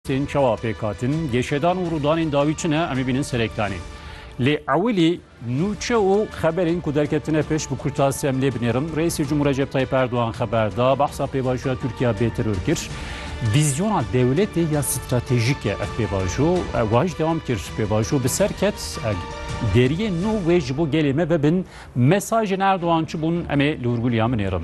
Tên çawa pêkhatin, gêşedan û rûdanên dawî çi ne em ê bînin serektanê. Lê ewilî nûçe û xeberên ku derketine pêş bi kurtasî em lê binêrim. Reîsê Cumhur Recep Tayyip Erdogan xeber da, behsa pêvajoya Tirkiya bê teror kir. Vîzyona dewletê ya stratejîk e ev pêvajo. Wan jî dewam kir, pêvajo bi ser ket, deriyên nû wê ji bo gelê me vebin Mesajên Erdogan çi bûn em ê li wir gul ya min êrim.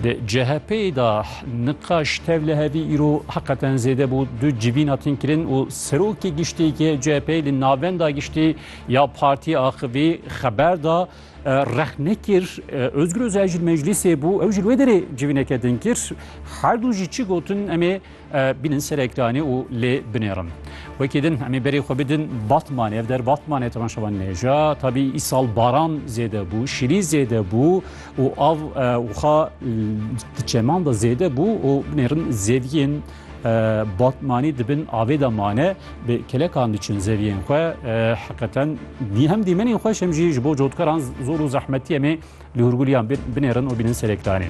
Di CHP'ê de niqaş tevlihevî îro heqeten zêde bû du civîn hatin kirin û serokê giştî yê CHP'ê li navenda giştî ya partiyê axivî xeber da rex nekir Ozgur Ozel jî li meclîsê bû ew jî li wê derê civîneke din kir. Her du jî çi gotin em ê Bînin serek danê û lê binêrin. Wekî din em ê berê xwe bidin Batmanê. Ev der Batmanê te şevan nêja. Tabî îsal baran zêde bû, şîrî zêde bû û av wixa di çeman de zêde bû û binêrin zeviyên Batmanî dibin avê de mane bi kelekan diçin zeviyên xwe heqeten dî hem dîmenên xweş hem jî ji bo cotkaran zor û zehmetiyê em ê Li hûrgûliyan binêrin û bînin serê kiranê.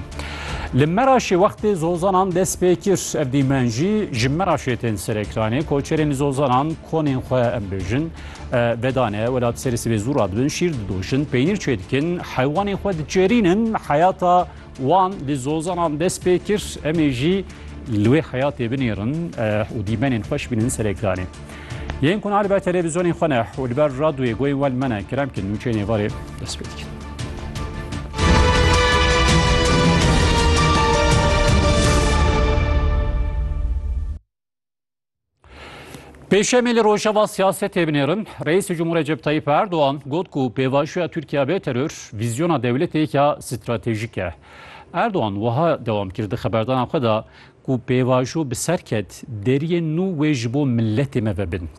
Li Meraşê wextê zozanan dest pê kir ev dîmen jî ji Meraşê tên serê kiranê koçerên li zozanan konên xwe em bêjin vedane welat serê sibê zû radibin şîr didojin peynîr çê dikin heywanên xwe diçêrînin heyata wan li zozanan dest pê kir em ê jî li wê heyatê binêrin û dîmenên xweş bînin serê kiranê. Yên ku nalibe televîzyonên xwe ne û li ber radyoyê goyên we li me ne kerem kin nûçeyên êvarê dest pê dikin. Pêşemê li Rojava siyasetê binêrin, Reîsê Cumhur Recep Tayyip Erdogan got ku pêvajoya Tirkiye bê teror vîzyona dewletê ya stratejîk e. Erdogan wiha dewam kir di xeberdana xwe de ku pêvajo bi ser ket, deriyên nû wê ji bo miletê me vebin.